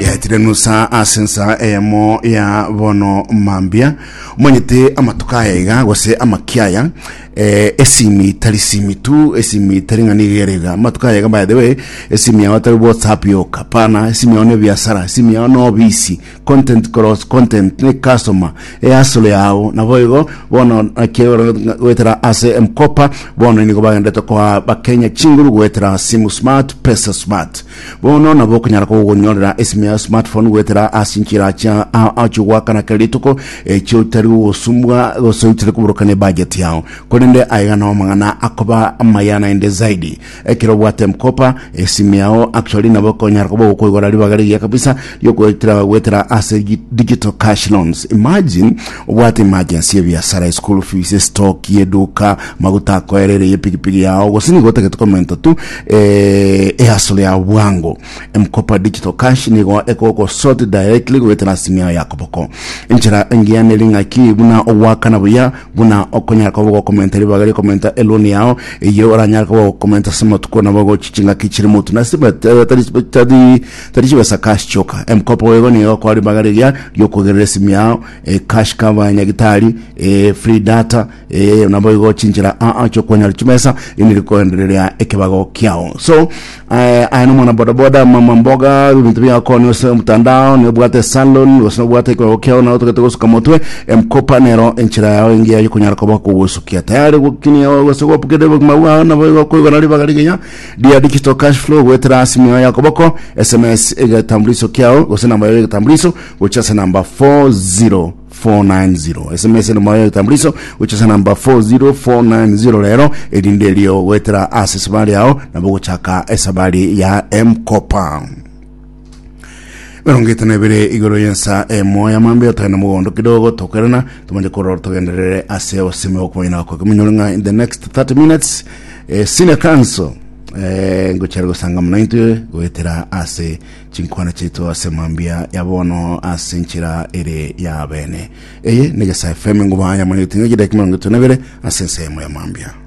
Yatirenusa ase ensa eyemo ya bono mambia omanyete amatuko aya iga gose amaki aya eh, esimi tari simi tu esimi tari ng'ani igerega amatuko aya iga by the way esimi yao tari whatsapp yoka pana esimi yao ne biasara esimi yao no obisi content cross content ne customer eyasolo yao nabo igo bono akiegora gwetera ase mkopa bono inigo bagendete kwa bakenya chinguru gwetera simu smart pesa smart Bono nabo okonyara kogonyorera esime ya smartphone goetera ase enchera chia a- achio goakana kera rituko echio otari gosumbwa gose oitire koborokania budget yao korende aiga nao amang'ana akoba amaya naende zaidi ekero obwate mkopa esime yao actually nabo ekonyara koba okoigora ribaga rigiya kabisa riokoetera goetera ase gi- digital cash loans imagine Obwate emergency y'ebiasara, eschool fees, estock y'eduka, maguta akoerere y'epigipigi yao, gose nigo otagete komenta tu eh, ehustle yao bwango. M-Kopa Digital Cash nigo ekogosort directly goetera ase ime yao ya koboko. Enchera engiya neri ng'aki buna ogoakana buya buna okonyara koba ogokomenta ribaga ri'okomenta eloan yao eyio oranyare koba ogokomenta ase amatuko nabo gochi chingaki chire motwe nase bat- batari- batari Tari chibesa cash choka. Emkopo ego nigo ekwa ribaga riria riokogerera esimi yao, eh, cash cover, nyagitari, eh, free data, eh, naboigo chinchera aa chiokonyora chimesa indi rikoendereria ekebago kiao. So, eh, aya na mwana boda boda, mama mboga, bintu biakonya ase omtandao, nobwate salon, gose nobwate ekebago kiao nao togete gosuka motwe, emkopa nero enchera yao engiya yokonyara koba kogosukia. Tayari gokinia gose gobukerera obogima bwao naboigo koigora ribaga rigiyia. Dear Digital Cash Flow goetera simu yao ya koboko, SMS egetambuliso kiao gose namba yao egetambuliso gochia ase namba 40490. SMS namba yao egetambuliso gochia ase namba 40490 rero erinde erio goetera ase esabari yao nabo gochaka esabari ya M-Kopa. mirongo itano ebere igoro yensa emo ya mambe otogenda mogondo kidogo tokerana tumanye korora togenderere ase osimi okoina kwa kiminyoro ng'a in the next 30 minutes eh, senior council eh, ngochare gosanga muna intwe goetera ase chinkwana chaito ase mambia ya bono ase nchira ere ya bene eye negesae fm ngobaya mane otinga gidaki mirongo itano ebere ase ensemo ya mambia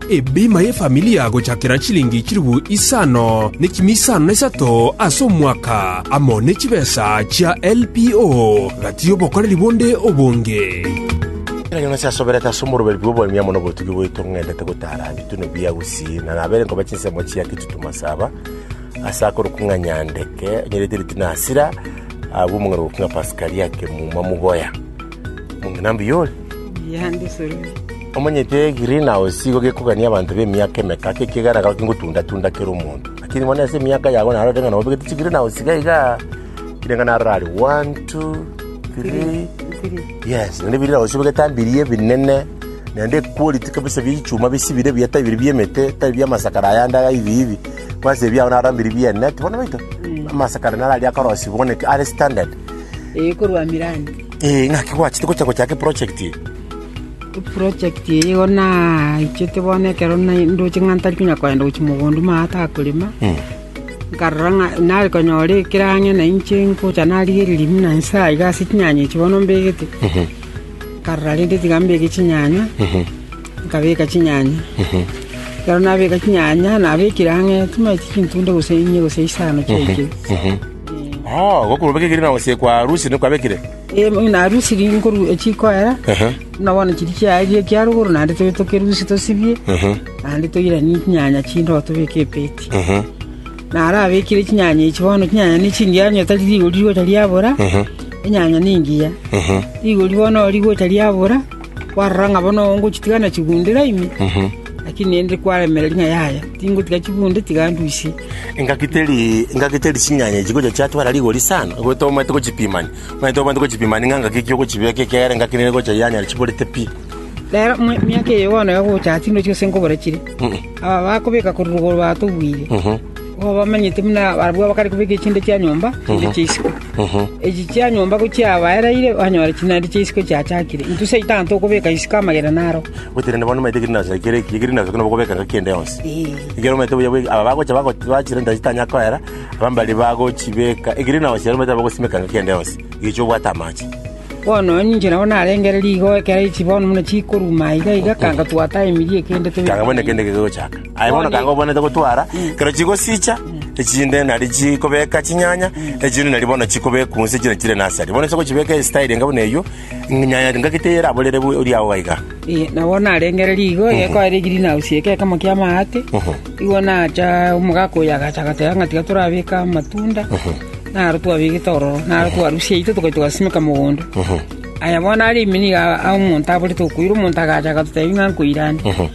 Ebima y'efamili agochakera chilingi chilifu isano ne chimi isano na isato ase omwaka, amo ne chibesa chia LPO, gati y'obokoreri bonde obonge. Ekero Yonasi asoberete ase omoruberu bw'oboremi amo nobotugi bwaito ng'endete gotara ebitune bia Usi, na nabeire nkoba chinsemo chia Kitutumo Saba, ase akorokwa ng'a Nyandeke, onyorete eritune Hasira, agwo omong'ina orokwa ng'a Paskali ake muma mogoya. Omong'ina mbuya ore. Omanyete egreen house igo gekogania abanto b'emiaka emeka, ki ekiagera iga kingotunda-tunda kera omonto. Lakini bono ase emiaka yago narorete ng'a nabo obegete chigreen house iga iga, kire ng'a narora are one, two, three, yes, naende egreen house obegete mbiria ebinene, naende equality kabisa bia echuma bisibire buya tari biri bi'emete, tari bi'amasakara ayande aya hivi hivi, kwansa ebi biago narora mbiri bi'enet bono nabaito, amasakara naro aria akorosiwa bono are standard. Ee, ng'aki gwachete gocha gochaaka eprojekti eye? Eprojekti eye igo naichete bono ekero na- ndoche ng'a ntari konya kogenda gochia mogondo ime aa atakorema nkarora ng'a nare konyora ekero ang'e na inche ngocha narigereria buna nse aa iga ase chinyanya echi bono mbegete nkarora rende tiga mbeke chinyanya nkabeka chinyanya ekero nabeka chinyanya nabekire ang'e chimai chintunda gose inye gose isano chiaikire Gokorwa obekire na gosekwa arusi nigo kwabekire? Ee, ng'a arusi chikoera, buna bono chiria chiaeire ekia rogoro naende tobe tokerusie tosibie, naende toiranie chinyanya chinde oo tobeke ebeti. Narabekire chinyanya echio bono, chinyanya ne chingiya onye tari rigori rigocha riabora, enyanya nengiya, rigori bono rigocha riabora. Kwarora ng'a bono ngochitigana chigundera ime, lakini ninde kwaremera ring'a yaya, tingotiga chigunde tiga ndusie. Engaki teri engaki teri chinyanya echi gocha chiatwara rigori sana, igo tomaete gochipimania. Muna tomaete gochipimania ng'a engaki ki ogochibeka ekiagera engaki nere gocha yanyara chiborete pi. Rero mia- miaka eye bono ya gocha aa tindochi gose nkobora chire, aba bakobeka korwa igoro batogwire. Nigo bamenyete buna barabwo bakare kobeka echinde chia nyomba chinde chia isiko. Echi chia nyomba ko chiabaereire, banyora chinandi chia isiko chiachakire. Intwe Satan tokobeka isiko amagena naro. Gotenena bono omanyete egreenhouse ekero eki, egreenhouse ekero nabokobeka engaki ende yonsi. Ekero omanyete buya bwe- aba bagocha bago- bachire ntari chitanya koera, abana mbaria bagochibeka egreenhouse ero omanyete nabogosimeka engaki ende yonsi, egecho obwate amache. Bono onye inche nabo narengere rigo ekero echi bono buna chikoruma iga iga, kanga twataimirie kende tobe. Kanga bono ekende kegochaka. Aye bono kanga obwanete gotwara, ekero chigosicha, echinde nario chikobeka chinyanya, echinde nario bono chikobekwa onsi chire chire nursery. Bono inse ogochibeka estyle enga buna eyio, nyanya engagete yeraborere bu- ori agwo gaiga. Eh, na bono narengereria igo egekoera egreen house eke ekemo kia amaate igo nacha omogaka oyo agacha agateba ng'a tiga torabeke amatunda naro twabegete ororo naro twarusia aito togacha togasimeka mogondo aya bono arime niga a- omonto aborete okoira omonto agacha agatotebia ng'a nkoirane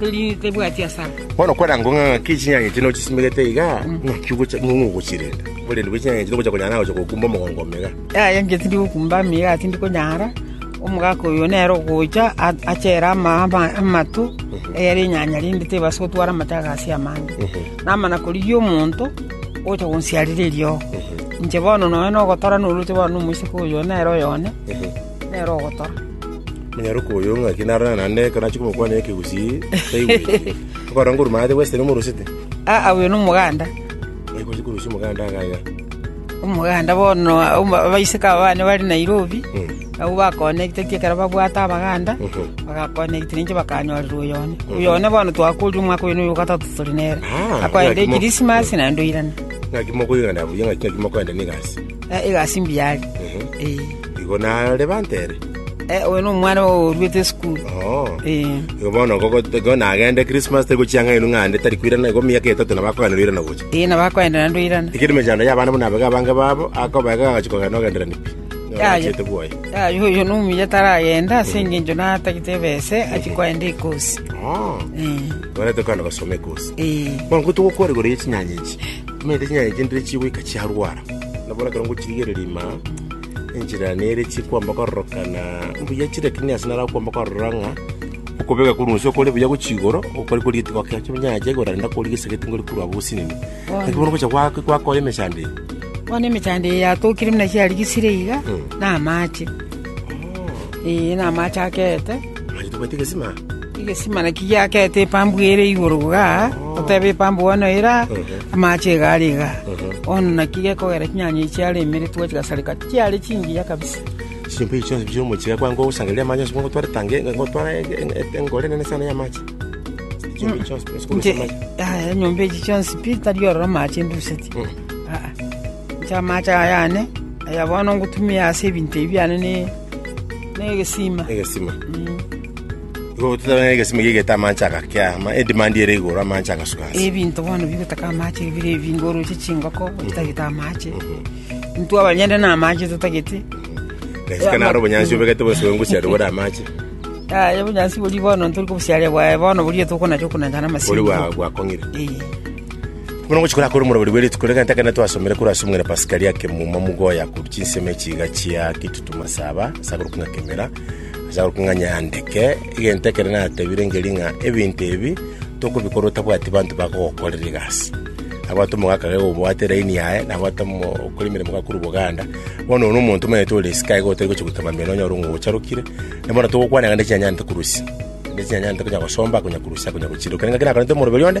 Teri tebwati asare. Bono kwanango ng'a ng'aki chinyanya echi nochisimerete iga, ng'aki ogocha ng'a ng'ogochirenda. Oborende bwe chinyanya echi nobocha konyara nagocha gokumba omogongo omega. Yaya inche tindi gokumba amiga, tindi konyara, omogaka oyo nere ogocha a- achere ama- ama- amato, eyere enyanya rinde tebasa gotwara amato aya gasi amange. Namana korigia omonto ogocha gonsiarera eriogo. Inche bono nonye nogotora norwete bono na omoiseke oyo nere oyone, nere ogotora. Omonyaroka oyo ng'aki narorane naende ekero nachia komokwanera ekegusii, taigweti. Okorora ngorwa maate bwesete nigo omorosete. Aa, oyo nomoganda. Oye gochia korosia omoganda iga iga. Omoganda bono aba- abaiseke aba bane bare Nairobi, abwo bakonektetwe ekero babwate abaganda, bagakonektirwa inche bakanyorerwa oyo one. Oyo one bono twakoria omwaka oyo na oyo ogatato tore nere. Ah, Akoenda ng'aki mo- ekirisimasi naende oirana. Ng'aki mokoigana buya ng'aki ng'aki mokoenda na egasi. Eh, egasi mbuya are. Ehe. Eh, Igo nare bantere. eh, oyo nomwana oruete esukuru. Oh. Eh, Igo bono gogo- igo nagende Christmas tari gochia ng'aino ng'ande tari kwirana igo miaka etato na bakogana noirana gocha. eh, nabakwenda nandoirana. Tikiri mechando ya abana buna abega abange babo akobega agachi kogana ogenderani pi. Yaya. Ngachete bwoye. Ah, yo oyo nomuya taragenda ase eng'encho natagete ebese achi kwaenda ekosi. Oh. Eh, Gore tokana gosoma ekosi. eh. Bono ko togokora igoro ye chinyanya echi. Ng'ende chinyanya chindire chigoika chiarwara, nabo ekero ngochirigereria ime aa, enchera nere chikwamba kororokana mbuya chire, lakini ase nare okwamba korora ng'a okobeka korwa onsi okore buya gochia igoro, okore kori geti gokia chinyanya chiaye igoro naende akori gesegeti ngori korwa abwo gosinini. Lakini bono gocha gwa- gwakoa emechando eye, Bono emechando eye yatokire buna chiarigisire iga, na amache. Ee, na amache akeete. Mwanyaito bwete egesima? Egesima naki giakete epambu ere igoro iga, oteba epambu bono era, amache iga are iga. Bono naki gekogera chinyanya echi chiare imere twachigasareka, chiare chingiya kabisa. Chimbe echi chionsi chia omochie ekwango gosangereria amache onsi gotwara etangi, gotwara e- e- e- engoro enene sana y'amache. Chimbe echi chionsi chionsi Inche, korwa amache. aya, nyomba echi chionsi pi tari ororo amache nduseti. Aa, inche amache aya ane, aya bono ngotumia ase ebinto ebi biane ne Negesima. egesima igo gototebe ng'a egesima giaigete amache agake ama edimandi ere igoro amache agasuka ase Ebinto bono bigotaka amache bire ebinge oroche chingoko otagete amache. Intwe abanyene na amache totagete. naisike naro obonyansi obegete bonsi bwa engusiari bore amache Yaya obonyansi boria bono ntori kobusiaria bwaye bono boria tokonacha okonanchana bori amasingo. bwa- bwakong'ire Ee. Buna ogochikora akore omorwori bwe rituko rigana ekero twasomire korwa ase omong'ina Pasika ria kemuma mogoye akorwa chinsemo echiiga chia gitutu masaba ase akorokwa ng'a kemera, ase akorokwa ng'a nyandeke, egento ekero natebire ngerie ng'a ebinto ebi tokobikora otabwati banto bakogokorera egasi. Abwate omogaka iga obwate line yaye, nabwate omo- okora emeremo iga korwa oboganda, bono oyo na omonto omanyete ore isiko aye iga otari gocha goita mambia nonyore ng'a ocharokire, na bono togokwana iga nde chinyanyarete korusia, nde chinyanyarete konya gosomba, konya korusia, konya gochiroka. Naki nakorente omorwori onde.